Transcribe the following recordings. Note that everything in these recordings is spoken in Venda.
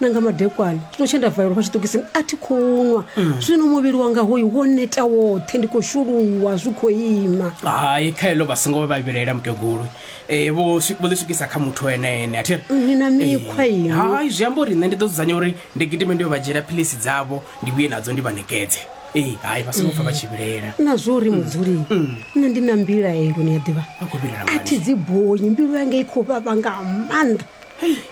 na nga madekwana tshino tshe nda valelwa fha tshiṱokisini a thi khou nwa mm. zwino muvhili wanga hoyu wo neta woṱhe ndi khou shuluwa zwi khou ima hai kha heḽo vha songo vha vhilaela mukegulu eh, vho ḽi swikisa kha muthu ene ene athi ni na mikhwa eh, iyo hai zwi amba uri nṋe ndi ḓo dzudzanya uri ndi gidime ndi yo vha dzhiela philisi dzavho ndi vhuye nadzo ndi vha nekedze eh, hai vha songo pfa vha tshi vhilaela na zwo uri mm. mudzuli mm. nṋe ndi na mbilaelo ni a ḓivha a thi dzi bonyi mbilu yanga i khou vhavha nga maanḓa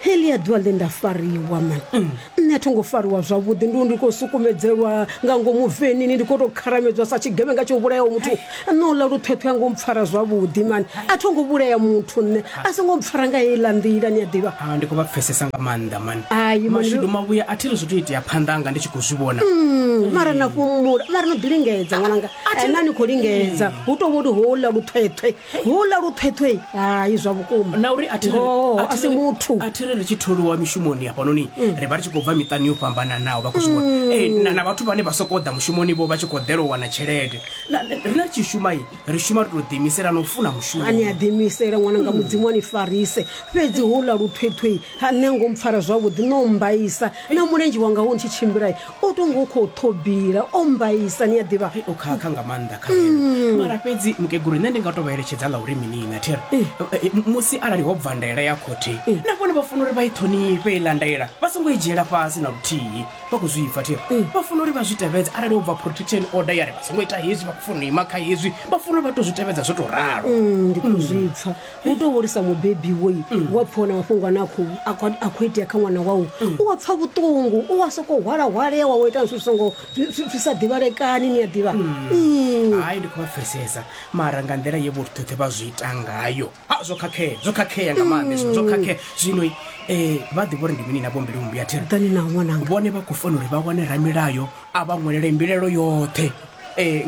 helia ḓuvha ḽe nda fariwa man mm. nṋe a tho ngo fariwa zwavhuḓi ndi ndi khou sukumedzelwa nga ngomu venini ndi khou tou kharamedzwa sa tshigevhenga tsho vhulayaho muthu nṋe uḽa luṱhweṱhwe a ngo mpfara zwavhuḓi mani a tho ngo vhulaya muthu nṋe a so ngo mpfara nga heiḽa nḓila ni a ḓivha ah, ndi khou vha pfesesa nga maanḓa mani mashudu mavhuya a thi ri zwithu itea phanḓa anga ndi tshi khou zwi vhona mm, mara na fhumula mara no ḓi lingedza ṅwananga na ni khou lingedza hu tou vholi houḽa luṱhweṱhwe Houḽa luṱhweṱhwe, hai, zwa vhukuma. Na uri a thi ri, Ngoho, a a thi si ri, muthu. a thi ri ri tshi tholiwa mishumoni hafhanoni ri vha ri tshi khou bva miṱani yo fhambananaho vha khou zwi vhona Eh, na, na vhathu vhane vha sokou ḓa mushumoni vho vha tshi khou ḓela u wana tshelede na, na- riṋe ri tshi shuma i ri shuma ri tou ḓiimisela na u funa mushumo A ni a ḓiimisela ṅwana nga mudzimu a ni farise fhedzi houḽa luṱhweṱhwei ha nṋe ngo mpfara zwavhuḓi no mmbaisa na mulenzhe wanga wo ntshi tshimbila o tonga u khou ṱhobila o mbaisa ni a ḓivha Ai, o khakha nga maanḓa kha nṋe mara fhedzi mukegulu nṋe ndi nga to vha eletshedza ḽa uri mini na thera Eh, eh, m- musi arali ho bva ndaela ya khothe na vhone vha funa uri vha i ṱhonifhe iḽa ndaela vha songo i dzhiela fhasi na luthihi vha khou zwi pfa thera vha funa uri vha zwi tevhedze arali ho bva protection order ya ri vha songo ita hezwi vha khou funa u ima kha hezwi vha funa uri vha to zwi tevhedza zwo to ralo Mm, ndi khou zwi pfa u tou hulisa mubebi woi mm. wa pfha wana mafhungo ane a khou itea kha ṅwana wau mm. u wa pfha vhuṱungu u wa sokou hwalahwalea wa wo ita zwithu songo zwi sa ḓivhalekani ni a ḓivha mm. hai ndi khou vha pfesesa mara nga nḓila ye vhoṱhoṱhe vha zwi ita ngayo a zwo khakhea zwo khakhea nga maanḓa izwo zwo khakhea zwino um eh, vha ḓivha uri ndi mini na vhombili mumbi a thirani na ṅwananga vhone vha khou fanela uri vha wane ramilayo a vha ṅwelele mbilelo yoṱhe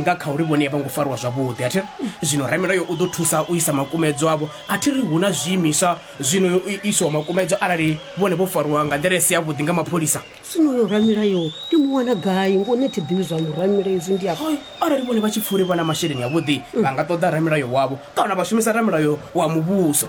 nga kha uri vhone a vho ngo fariwa zwavhuḓi. A thi ri zwino ramilayo u ḓo thusa u isa makumedzwa avho. A thi ri hu na zwiimiswa zwi no iswaho makumedzwa arali vhone vho fariwa nga nḓila i si yavhuḓi nga mapholisa. Zwino uyo ramilayo ndi mu wana gai? Ngoho nṋe thi ḓivhi zwa uyo ramilayo, izwi ndi a. Arali vhone vha tshi pfa uri vha na masheleni avhuḓi, vha nga ṱoḓa ramilayo wavho kana vha shumisa ramilayo wa muvhuso.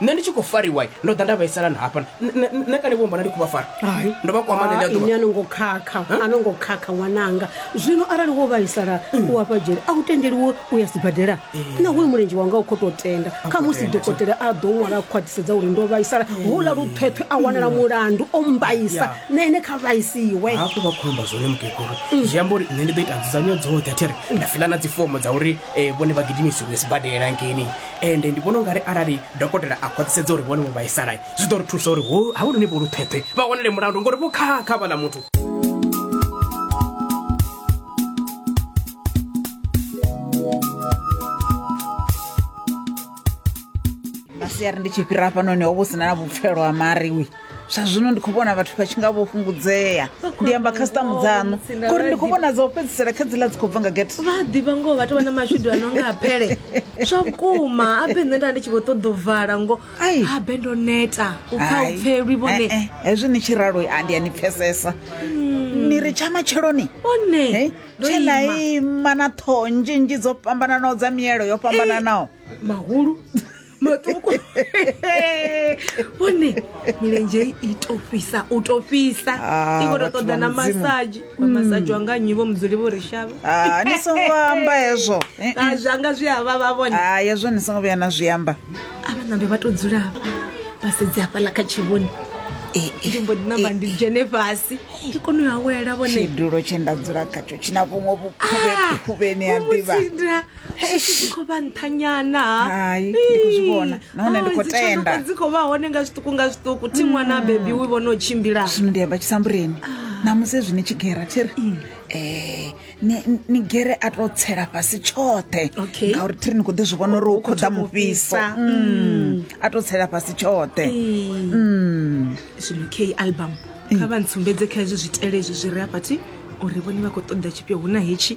Nṋe ndi tshi khou fariwa ndo ḓa nda vhaisala na hafha nṋe kale vho mbona ndi khou vha fara ndo vha kwama ḽeḽo ḓuvha. Ini a no ngo khakha a no ngo khakha ṅwananga zwino arali wo vhaisala mm. u hafha dzhele a u tendeliwo u ya sibadela eh. na hoyu mulenzhe wanga u khou tou tenda kha musi dokotela a ḓo ṅwala a khwaṱhisedza uri ndo vhaisala eh. houḽa luṱhweṱhwe a wanala mm. mulandu o mbaisa na ene kha vhaisiwe hafho vha khou amba zwone mukegulu mm. zwi amba uri nṋe ndi ḓo ita nzudzanyo dzoṱhe a thi ri nda fiḽa na dzifomo dza uri eh, vhone vha gidimisiwe sibadela ngeni Ende ndi vhona u nga ri arali dokotela a khwaṱhisedza uri vhone vho vhaisala, zwi ḓo ri thusa uri ho havhanoni vho luṱhweṱhwe vha wanele mulandu ngori vho khakha havhaḽa muthu. Masiari ndi tshi fhira hafhanoni ho vha hu si na na vhupfelo ha Mari. zwa zwino ndi khou vhona vhathu vha tshi nga vho fhungudzea ndi amba khasitamu dzaṋu ngori ndi khou vhona dza u fhedzisela kha dziḽa dzi khou bva nga gete vha a ḓivha ngoho vhathu vha na mashudu a no nga a pele zwa vhukuma abe nṋe nda ndi tshi vho ṱoḓa u vala ngo Ai. abe ndo neta u pfa u pfelwi vhone Eh, eh, hezwi ni tshi ralo a ndi a ni pfesesa ni ri tsha matsheloni one Hey, ndo tshe na ima ima na ṱhoho nzhinzhi dzo fhambananaho dza mielo yo fhambananaho mahulu matuku vhone milenzhe i to fhisa u to fhisa Ah, i khou to vhathu ṱoḓa vha na Mudzimu. Mm. masaji vha masaji wanga nnyi vho mudzuli vho ri shavha Ah, ni songo amba hezwo Eh, eh. Ah, zwanga zwi a vhavha vhone Ah, hezwo ni songo vhuya na zwi amba avha nambe vha to dzula hafha vha sedze hafhaḽa kha tshivhoni Eh, eh. ndi mbo ḓi namba ndi dzhene fhasi ndi kone u awela vhone tshidulo tshe nda dzula khatsho tshina vhuṅwe vhukhuvhe- vhukhuvheni ha ḓivha Ah, Vho mu tsindra. Eish. khou vha nṱhanyana Hai, ndi khou zwi vhona. Nahone ndi khou tenda. dzi khou vha hone nga zwiṱuku nga zwiṱuku thi ṅwana bebi wi vhona u tshimbila zwino ndi amba tshisambureni namusi zwi ni tshi gera thi ri um ni- ni- ni gere a to tsela fhasi tshoṱhe Okay. ngauri thi ri ni khou ḓi zwi vhona uri hu khou ḓa thoma u mufhiso fhisa. Mm. a to tsela fhasi tshoṱhe Mm. zwino k album kha vha ntsumbedze kha hezwi zwitele hezwi zwi re afhathi uri vhone vha khou ṱoḓa tshifhio hu na hetshi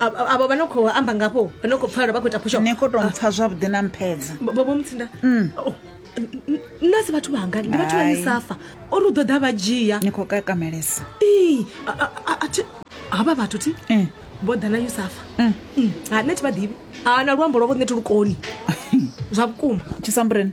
Avho avho vha no khou amba ngafho vha no khou pfala vha khou ita phusho ni khou tou mpfa zwavhuḓi na mphedza bobo mutsinda Oh, n- n- nna si vhathu vhanga ndi vhathu vha Hai. misafa ori u ḓo ḓa vha dzhia ni khou kakamelesa Ii, a- a- a- a thi- havha vhathu thi Mm. vho ḓa na yusafa Mm. ha nṋe thi vha ḓivhi ha na luambo lwavho nṋe thi lukoni zwa vhukuma tshisambuleni